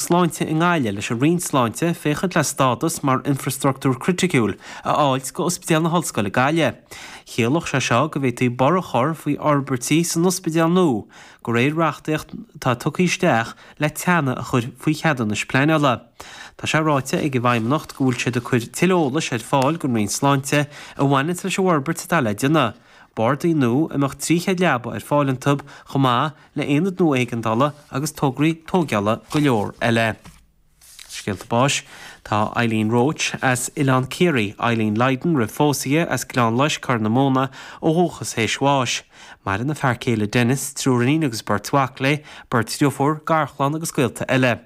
Sláinte i nGaillimh leis an Roinn Sláinte féachaint le stádas mar infreastruchtúr criticiúil a fháilt go Ospidéal na hOllscoile Gaillimh. Chiallódh sé seo go bhféadfaí borradh chur faoi fhorbairtí san ospidéal nua go réir reachtaíocht atá tugtha isteach le teannadh a chur faoi cheadúnais pleanála. Tá sé ráite ag an bhFeidhmeannacht go bhfuil siad ag cuir tuilleadh eolais ar fáil don Roinn Sláinte a bhaineanns leis an bhforbairt atá le déanamh, bardaí nua a mbeadh trí chéad leaba ar fáil iontu chomh maith le haonad nua éigeandála agus tograí tógheala go leor eile. Scéalta báis, Tá Eileen Roche as Oileán Ciarraí, Eileen Lydon roimh phósadh di as Gleann Loisce, Corr na Móna, ó dhúchas théis bháis. Maireann a fear céile Dennis, triúr iníon agus beirt mhac léi, beirt dhriofúr, garchlann agus gaolta eile.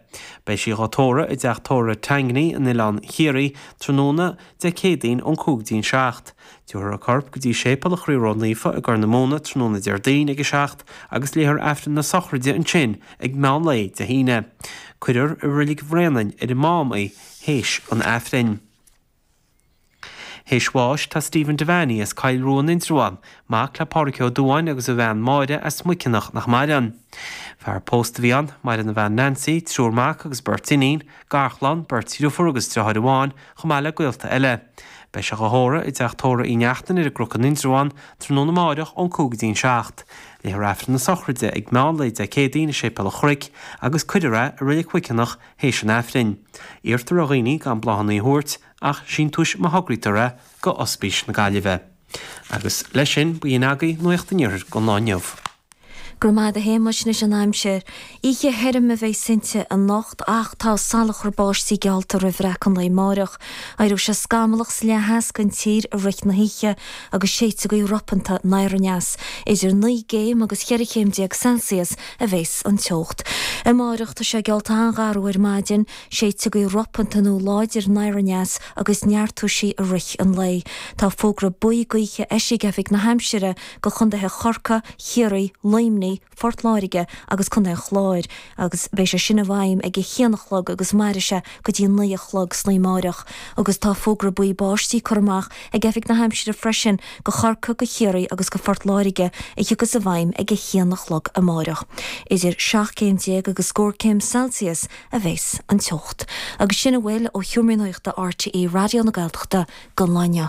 Beidh sí dhá tórramh i dTeach Tórraimh Tangney in Oileán Chiarraí tráthnóna Dé Céadaoin ón cúig go dtí'n seacht. Tiubharfar a corp go dtí Séipeal a' Chroí Ró-Naofa i gCorr na Móna tráthnóna Déardaoin ag a seacht agus léifear Aifreann na Sochraide ansin ag meán lae Dé hAoine. Cuirfear i Roilig Bhréanainn ar an Mám í th'éis an Aifrinn. Th'éis bháis tá Stephen Devaney as Coill Rua in Indreabhán, mac le Pádraig Ó Dubháin agus a bhean Máire as Muiceanach nach maireann. Fear pósta a bhí ann, maireann a bhean Nancy, triúr mac agus beirt iníon, garchlann, beirt dhriofúr agus driotháir amháin, chomh maith le gaolta eile. Beidh sé dhá thórramh i dTeach Tórraimh Uí Neachtain ar an gCruc in Indreabhán tráthnóna amáireach ón cúig go dtí'n seacht. Léifear Aifreann na sochraide ag meán lae Dé Céadaoin i Séipéal an Chnoic agus cuirfear é i Reilig Mhuiceanach théis an Aifrinn. Iarrtar ar dhaoine gan bláthanna a thabhairt ach síntiúis má thograítear é go Ospís na Gaillimhe. Agus leis sin, b'in agaibh Nuacht an Iarthair don lá inniu. Go raibh maith agat a Shéamais, anois an aimsir. Oíche thirim a bheas inti anocht ach tá salachar báistí geallta roimh bhreacadh an lae amáireach. Éireoidh sé scamallach sa leath theas den tír i rith na hoíche agus séidfidh gaoth ropanta nairaneas. Idir naoi gcéim agus cheithre chéim déag Celsius a bheas an teocht. Amáireach tá sé geallta an-gharbh ar maidin. Séidfidh gaoth ropanta nó láidir nairaneas agus neartóidh sí i rith an lae. Tá fógra buí gaoithe eisithe ag Oifig na hAimsire go chondaetha Chorca, Chiarraí, Luimní, Phort Láirge agus Condae an Chláir agus beidh sé sin i bhfeidhm ag a haon a chlog agus mairfidh sé go dtí a naoi a chlog san oíche amáireach agus tá fógra buí báistí curtha amach ag Oifig na hAimsire freisin go Chorca, go Chiarraí agus go Phort Láirge a thiocfas i bhfeidhm ag a haon a chlog amáireach. Idir seacht gcéim déag agus scór céim Celsius a bheas an teocht agus sin a bhfuil ó Sheomra Nuachta RTÉ Raidió na Gaeltachta don lá inniu.